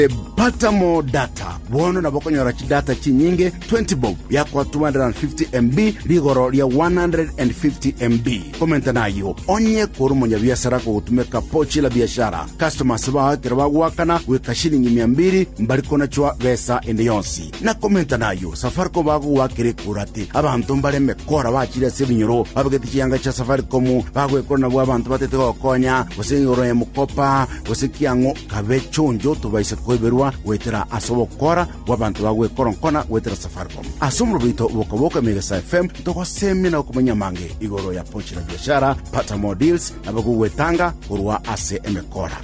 Ebatamo Data. Bono nabo okonyora chidata chinyinge 20 bob yakwa 250 MB rigoro ria 150 MB. Komenta nayo onye kore omonyabiasara kogotumeka pochi la biashara. Customers bao ekero bagoakana goika shilingi mia mbiri mbari konachwa besa ende yonsi. Na komenta nayo Safaricom bagogoakera ekura ati abanto mbare emekora bachire ase ebinyoro babegete chianga chia Safaricom bagwekora nabwo abanto batete gokonya gose igoro ya mokopa gose kiang'o Kabe chonjo tobaise koiberwa goetera ase ogokora gw'abanto ba gwekoronkona goetera Safaricom. Ase omorobo oito Bokaboka Emegesa FM togosemia na okomanya amange igoro ya Pochi la Biashara, Pata More Deals na abagogwetanga korwa ase emekora.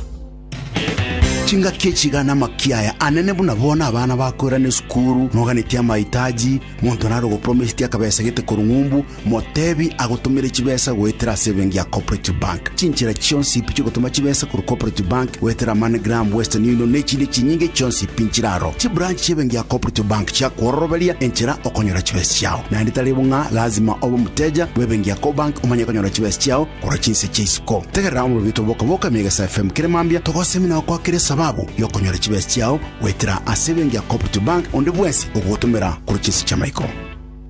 Chingaki echi iga namakia aya anene buna bono abana bakoirana esukuru, noganetie amaitaji, monto nare ogopromiseti akabesa gete korwa ng'umbu, Motebi agotomere chibesa goetera ase ebenki ya Cooperative Bank. Chinchera chionsi pi chiogotoma chibesa korwa Cooperative Bank goetera MoneyGram, Western Union na echinde chinyinge chionsi pi nchire aro. Chibranch chi'ebenki ya Cooperative Bank chiakwororoberia enchera okonyora chibesa chiao. Naende tari bo ng'a lazima obe omoteja bw'ebenki ya Cobank omanye konyora chibesa chiao korwa chinse chia isiko. Tegerera omobibito bw'Oka Boka Ime Egesa FM kere mambia togosemi na gokwakera esababu y'okonyora chibesa chiao goetera ase ebenki ya Cooperative Bank onde bwensi ogogotomera korwa chinse chi'amaiko.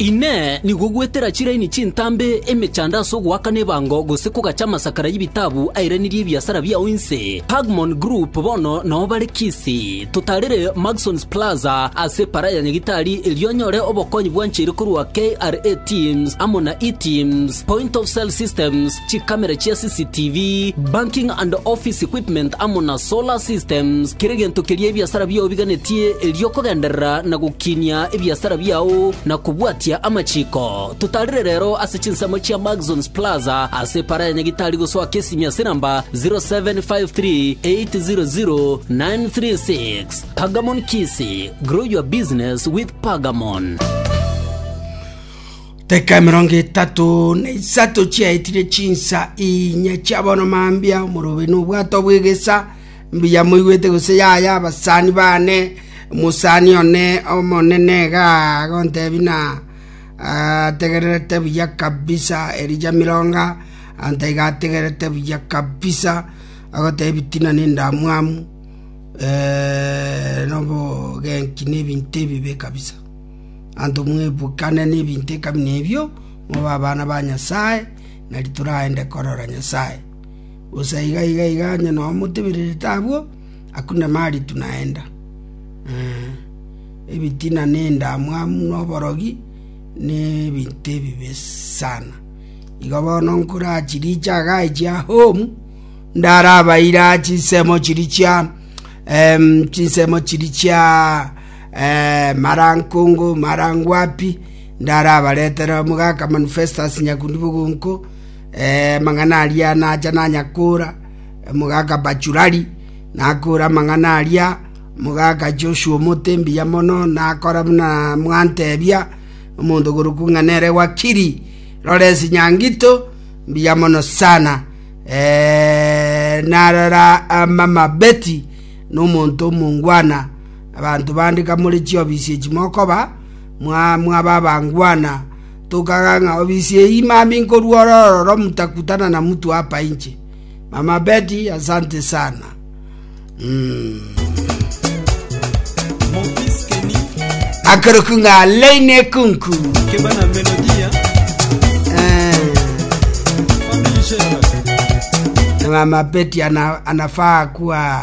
Inee! Nigo gwetera chiraini chintambe emechando ase ogoakana ebango gose kogacha amasakara y'ebitabu airanirie ebiasara biao inse? Pagmon Group bono nao bare Kisii. Totarire Maxons Plaza ase Para ya Nyagitari erio onyore obokonyi bwancheire korwa KRA Teams amo na eTeams, Point of Sale Systems, chikamera chia CCTV, banking and office equipment amo na solar systems, kera egento keria ebiasara biao biganetie erio okogenderera na gokinia ebiasara biao na kobwatia amachiko. Totarire rero ase chinsemo chia Maxons Plaza ase epara ya Nyagitari gosoa Kisimia ase namba 0753800936. Pagamon Kisii, grow your business with Pagamon. Teka emerongo etato na isato chiaetire chinsa inya chia bono mambia, omorobe nobwato bw'egesa, mbuya moigwete gose yaya abasani bane, omosani one omonene iga agontebi na ategererete buya kabisa, Elija Mironga, anta iga ategererete buya kabisa, agotebi bitina na endamwamu, na obogenki na ebinto ebibe kabisa. Abanto mwebukane nebinto ekabi nebio, mobe abana ba Nyasae, na ritura aende korora Nyasae. Gose aiga iga iga onye noo motebererete abwo, akune maritu naenda. Ebitina ne endamwamu na oborogi nebinto ebibe sana. Igo bono nkure aa chirichi iga chia home, ndarabaire aa chinsemo chiri chia chinsemo chiri chia Mara nkongo, mara ngwapi, ndarabaretere omogaka-manu Festus nyakundi bogonko, amang'ana aria nacha nanya koora omogaka Bachurari, nakoora amang'ana aria. Omogaka Joshua omote mbuya mono, nakora buna mwantebia, omonto oborokigwa ng'a nere Wakiri Lawrence Nyangito, mbuya mono sana. Narora mama Betty, nomonto omongwana. Abanto bande kamore chiobisi echi mokoba, mwaba abangwana, tokaga ng'a obisi eye imami nkorua ore ororo mutakutana na mutu apa inche. Mama Betty, asante sana. Akeroku ng'a Leine Kunku. Eh. Na Mama Betty ana, anafaa kuwa